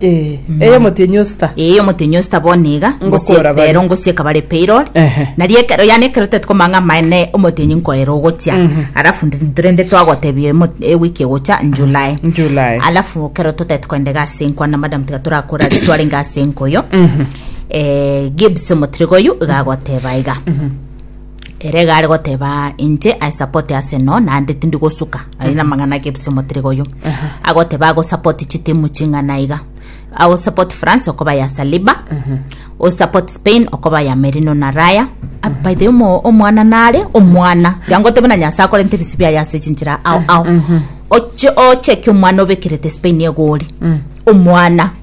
Eh, eye omotienyi osita eye omotenyi osita bono iga Ngokoora ngosie- bare. rero ngosieka bare payroll Ehe. nari ekero yani ekero tete komanga amaene omotenyi nkoera ogochia alafu ndi- rende twagotebia emo- ewiki egocha july July. alafu kero totete koenda egasi enko na madam tiga torakora ase twarenge ase enko oyo eh, gibbs omotiriga oyo iga agoteba iga Ere iga are goteba, Inche I support Arsenal naende tindi gosuka aye namang'ana ake FC Motirega oyo. Agoteba ago support chitimu ching'ana iga. Ago support France okoba ya Saliba. O support Spain okoba ya Merino na Raya. Ah, By the way, omo- omwana nare omwana. Yangoteba na Nyasaye akorente ebisi biaye ase chinchera ao ao. Oche oche ki omwana obekerete Spain egori. Omwana.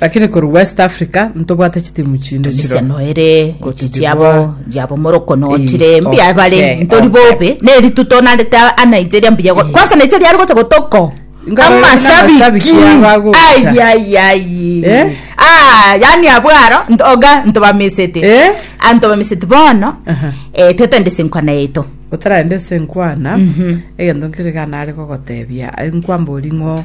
Lakini korwa West Africa ntobwate chitimu chinde chiro. Emiseno ere gochi chiabo yabo moroko notire Eh, mbuya bare okay, ntori okay. bobe ne rituto na reta a Nigeria mbuya go- kwanza Nigeria ari gocha gotoko Inga bari amasabiki n'amasabiki abagocha. ai ai ai Eh? ah yani abwaro nt- oga ntobamisete Eh? antobamisete bono Aha. eh tetende sinkwana yeto otarende ase nkwana egento nkere gana are gogotebia ari nkwamba ori ng'o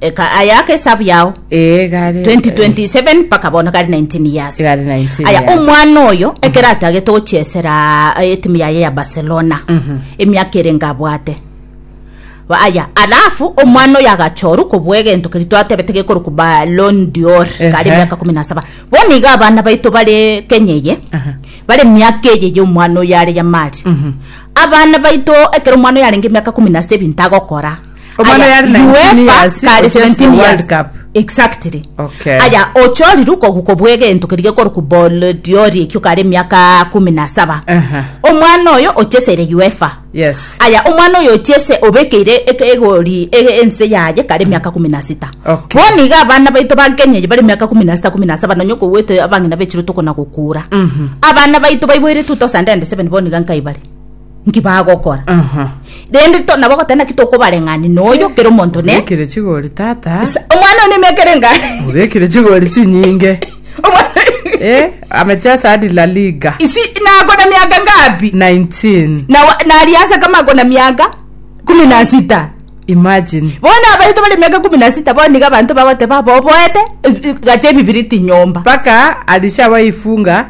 Eka aya ake esabu yao Ee, gare. 2027 mpaka bono gari 19 years Gari 19 aya years. omwana oyo ekero atagete gochesera eh, etimu yaye ya barcelona emiaka ere ngabwate Ba- aya alafu omwana oyo agachoru kobua egento keri twatebete gekorokwa balon dior kare Ehe. emiaka kumi na saba bono iga abana baito bare kenya eye Aha. bare miaka eye ya omwana oyo are yamari abana baito ekero omwana oyo arenge emiaka kumi na sita ebinto agokora Omwana yari 19 years, kare ochesia 17 World years Cup. exactly Okay. aya ochoriru koguko bwegento keri gekorokwa ball diori ekio kare emiaka kumi na saba Aha. omwana oyo ochesere uefa Yes. aya omwana oyo ochese obekeire eke- egori e- ense yaye kare emiaka kumi na sita Okay. bono iga abana baito ba kenya eyi bare emiaka kumi na sita kumi na saba nonye kogwete abang'ina bechiro tokona gokura abana baito baiboire 2007 bono iga nkai bare nki bagokora Aha. rende to- nabo goteba naki tokobareng'ani noyo kera omonto ne Obekire chigori tata. Sa- omwana one emeka ere enga Obekire chigori chinyinge. Omwana- Eh, amechesa hadi La Liga. isi nakona miaka ngapi 19. Na wa- nariasa kama akona miaka kumi na sita Imagine. bona abaito bari miaka kumi na sita boniga abanto bagoteba boboete eh, eh, gacha ebibiriti nyomba Paka alishawaifunga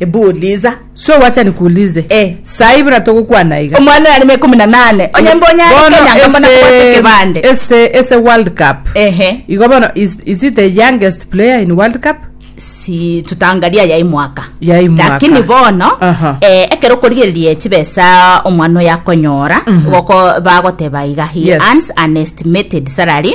Ebu uliza. Sio wacha nikuulize. Eh. Sahi buna togokwana iga. Omwana oyo arimo ikomi na nane. Onye mbe onye are Bono kenyanga mbo nakobwate ase ekebande. ase ase World Cup. Ehe. Igo bono is, is it the youngest player in World Cup? si tutangaria ya imwaka Ya imwaka. lakini bono Aha. eh, ekero okorigereria chibesa omwana oyo akonyora goko bagoteba iga he Yes. earns an estimated salary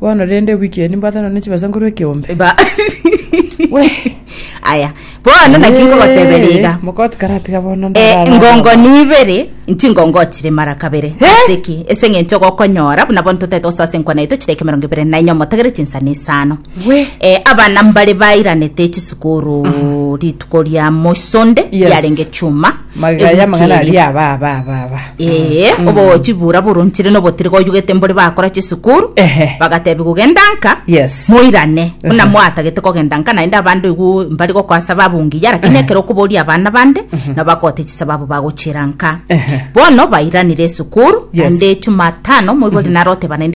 Bono rende ewiki eye nimbwate nonye chibesa nkorwa ekeombe. Eba. We. Aya. Bono naki nkogoteberia Eh, iga. Mokoti karatiga bono Eh, ndarara ngongo araba. ni ibere nchingongoo chire mara kabere ase ki ase eng'encho gokonyora buna bono totaete gosoa ase enkwana yaito chire eke emerongo ebere na inya omotagere chinsani isano We. Eh, abana mbare bairanete chisukuru ritwa koria moisonde Yes. yarenge chuma Magega ebuki y'amang'ana eria. aria aba aba aba aba. Ee, obogochi bura boronchire nobotiri goyugete mbore bakora chisukuru Ehe. bagatebi kugenda nka Yes. moirane buna mwatagete kogenda nka naende abande igu mbari gokoa sababu ngiya lakini ekero okoboria abana bande nabo bakote chisababu bagochira nka Ehe. bono bairanire esukuru Yes. naende chumatano moibori naroteba naende